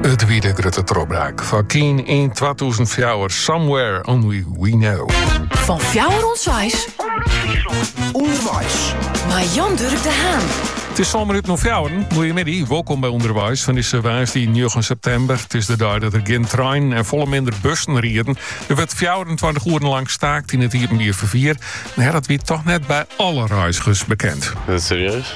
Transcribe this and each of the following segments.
It wie de grutte trochbraak foar Keane yn 2004 Somewhere Only We Know. Fan fjouwer oant seis. Underweis. Mei Jan Durk de Haan. It is sân minuten oer fjouweren. Goeiemiddei, wolkom by Underweis fan dizze woansdei 9 septimber. It is de dei dat der gjin treinen en folle minder bussen rieden. Der wurdt 24 oeren lang staakt yn it iepenbier ferfier. Mar dat wie toch net by alle reizgers bekend. Serieus?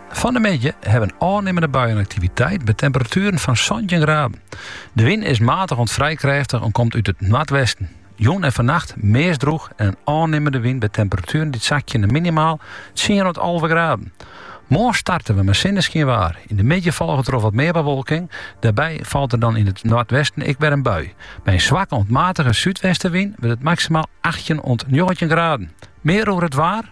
Fan de middei ha we in ôfnimmende buienaktiviteit by temperatueren fan santjin graden. De wyn is maatich oant frij krêftich en komt út it noardwesten. Jûn en fannacht meast drûch en in ôfnimmende wyn by temperatueren dy't sakje nei minimaal tsien oant alve graden. Moarn starte we mei sinneskynwaar. Yn de middei folget troch wat mear bewolking. Dêrby falt der dan yn it noardwesten ek wer in bui. By in swakke oant matige súdwestenwyn wurdt it maksimaal achttjin oant njoggentjin graden. Mear oer it waar?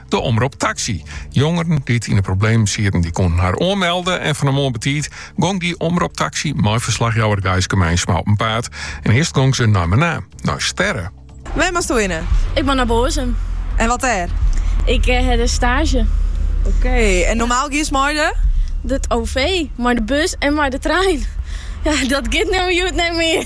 De Omrop Taxi. Jongeren dy't yn de problemen sieten, dy koenen har oanmelde en fan 'e moarn betiid gong dy Omrop Taxi mei ferslachjouwer Gijske Meinsma op 'en paad. En earst gong se nei Menaam, nei Sterre. Wêr moasto hinne? Ik moat nei Boazum. En wat dêr? Ik hie der staazje. Oké, en normaal giest mei de? De OV, mei de bus en mei de trein. Dat giet no hjoed net mear.